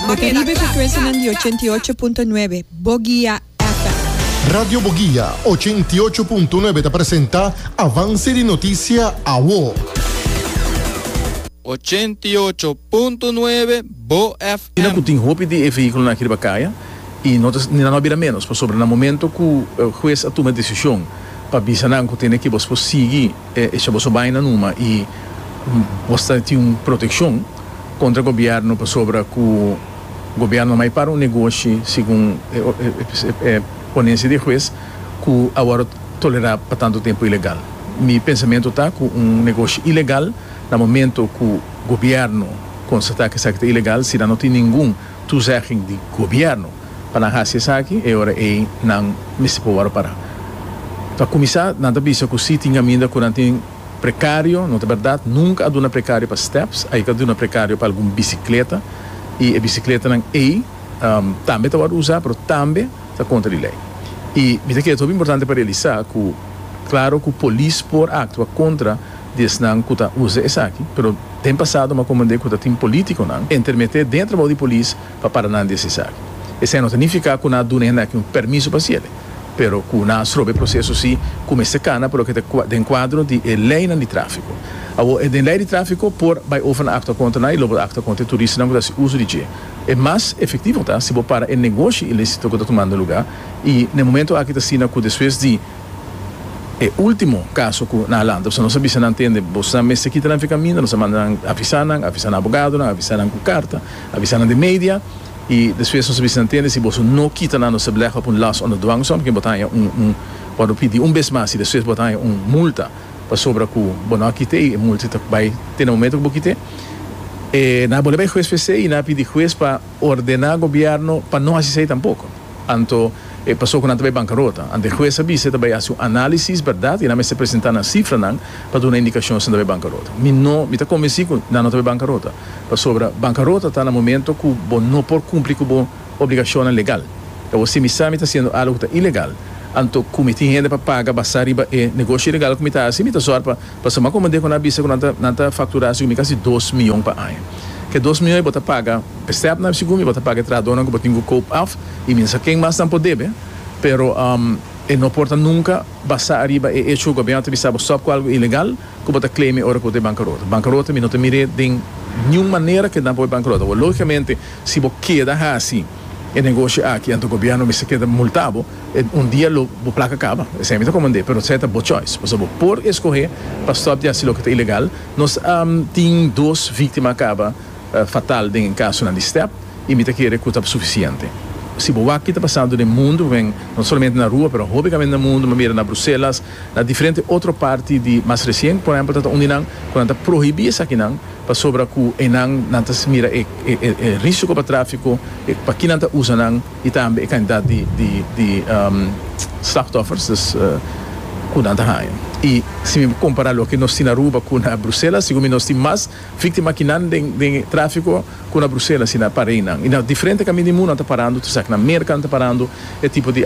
Bo ta riba e frekwensianan di ochenta i ocho punto nuebe Bogia FM. Radio Bogia ochenta i ocho punto nuebe ta presenta Avance di Noticia Awo. Ochenta i ocho punto nuebe Bo Kila ku FM. tin hopi di e vehíkulonan aki riba kaya i no ta ni nan no a bira ménos pasobra na momento ku hues a tuma e desishon pa bisa nan ku tene ki bos por sigui E cha boso baina numa y bo sta tin un proteccion contra gobierno pasobra cu gobierno a mai para un negoshi segun e ponencia di e huez cu a worde tolera pa tanto tempo ilegal. Mi pensamento ta cu un negoshi ilegal na momento cu gobierno constata cu esaki ta ilegal si nan no tin ningun toezegging di gobierno pa nan haci esaki e ora ey nan mester por worde para. Pa cuminsa nan ta bisa cu si tin caminda cu nan tin precario, no ta berdad, nunca a duna precario pa steps, ayi ta duna precario pa algun bicicleta y e bicicletanan ey tambe ta worde uza pero tambe ta contra di ley. Y mi ta kere ta hopi importante pa realisa cu claro cu polis por actua contra di esnan cu ta uza esaki pero. Den pasado m'a comandé cu ta tin politiconan entermeté dentro bou di polis pa para nan di esisai. Esei no ta nifica cu nan a duna hende aki un permiso pa hacele, pero cu nan a strobe e proceso si cu mester cana pa loke ta den cuadro di e leynan di trafico. Awor e den ley di trafico por bay over na actua contra nan y lo por actua contra e turistanan cu ta haci uso di dje. E mas efectivo ta si bo para e negoshi ilícito cu ta tumando lugar y n'e momento aki ta asina cu despues di E ultimo caso cu nan a lanta, nos a bisa nan tende, Bos ta mester kita nan fica minda, nos a manda nan avisa nan, avisa nan abogadonan, avisa nan cu carta, avisa nan den media, y despues nos a bisa nan tende, si bos no kita nan nos a belegha op un loss under dwangsom, porque bo ta haña un un cuando bo pidi un bes mas y despues bo ta haña un multa pasobra cu bo no a kite y e multa ta bay te na momento cu bo kite, e nan a bolbe bay huez p'esey y nan a pidi huez pa ordena gobierno pa no haci esey tampoco. Anto e paso cu nan ta bay bancarota. Anto e hues a bisa e ta bay haci un analisis, berdad, y nan mester presenta nan cifranan pa duna indicacion si nan ta bay bancarota. Mi no, mi ta convenci cu nan no ta bay bancarota. Pasobra bancarota ta na momento cu bo no por cumpli cu bo obligacionnan legal. E bo simis sa mi ta haciendo algo cu ta ilegal. Anto cu mi tin hende pa paga basa riba e negoshi ilegal cu mi ta haci, mi ta zor pa. Pasobra como Deco na bisa cu nan ta nan ta factura si gumi casi dos mion pa aña. K'e dos mion ei bo ta paga e stepna si gumi, bo ta paga e trahadornan cu bo tin cu koop af y minsa ken mas nan por debe, pero e no por ta nunca basa ariba e hecho cu gobierno ta bisa bo stop cu algo ilegal cu bo ta claim'e ora cu bo ta e bancarota. Bancarota mi no ta mir'e den niun manera cu e nan por bancarota. Awor logicamente si bo keda haci e negoshi aki anto gobierno mester keda multabo. Un dia lo bo plaka kaba, esei mi ta komand'é, pero esei ta bo choice. Pasobra bo por eskohé pa stòp di hasi loke ta ilegal. Nos a tin dos víktima a kaba fatal den kasunan di stèp i mi ta kere ku ta sufisiente. Si bo wak ki ta pasando den mundu, wen, no solamente na rua, pero hopi kamen na mundu, manera na Bruselas, na diferente otro parti di mas resien, por ehèmpel, ta ta un di nan ku nan ta prohibí esakinan pasobra ku einan nan ta mira e risiko pa tráfiko, pa ki nan ta usa nan. y tambe e cantidad di slachtoffers dus cu nan ta haya y si mi compara loke nos tin Aruba cu na Bruselas segun mi nos tin mas victima ki nan den e trafico cu na Bruselas y na pareinan y na diferente camin di munu nan ta parando tur esaki na merca nan ta parando e tipo di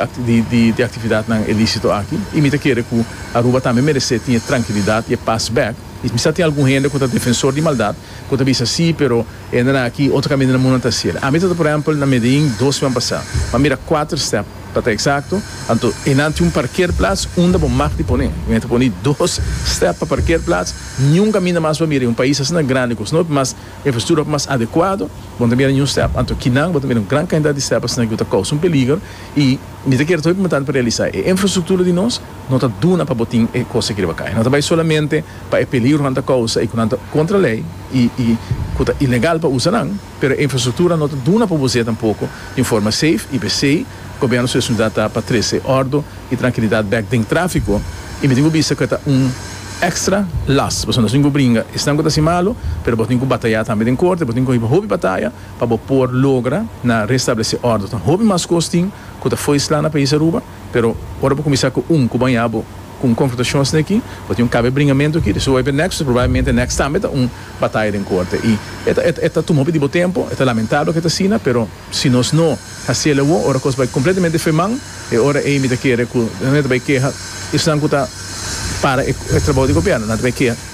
actividad nan elicito aki y mi ta kere cu Aruba tambe merece tin e trankilidad y e paz bek y mi sa tin algun hende cu ta defensor di maldad Ku ta bisa sí, pero e na na aki, otro kaminda na mundonan ta hasiel. Ami ta ta, por ehèmpel, na Medellín dos semana pasá. M'a mira kuater stèp, pa ta eksakto. Anto einan tin un parkeerplats unda bo mag di pone. Mi a ta pone dos stèp pa parkeerplats. Niun kaminda mas bo a mira. Un pais asina grandi, ku snop mas infrastruktura hopi mas adekuado, bo no ta mira niun stèp. Anto kinan bo ta mira un gran kantidat di stèp asina ku ta kousa un peliger. I mi ta kere ta hopi muntante pa realisá e infrastruktura di nos. No ta duna pa bo tin e kos aki riba kai. No ta bai solamente pa e peligro ku nan ta kousa i ku nan ta kontra lei i ku ta ilegal pa usa nan, pero e infrastruktura no ta duna pa bo usa tampoko di un forma seif i p'esei Gobièrnu Sua Sintidad ta pa trese òrdu i trankilidat bèk den tráfiko i mi tin ku bisa ku e ta un èkstra las pasobra nos tin ku bringa esnan ku ta hasi malu pero bo tin ku batayá tambe den korte, bo tin ku hiba hopi bataya pa bo por logra na restablesé òrdu. Ta hopi mas kos tin ku ta fo'i slá na País Aruba. Pero ora bo kuminsá ku un ku bañá bo ku un konfrontashon asina aki, bo tin un kaba e bringamentu aki, di suwape nèks, pues probablemente nèks tambe ta un bataya den korte. I e ta tuma hopi di bo tempu, e ta lamentabel ku e ta asina, pero si nos no hasiel awor, ora kos bai kompletamente fe man, e ora ei mi ta kere ku nan e ta bai keha esnan ku ta para e trabou di gobièrnu, nan ta bai keha.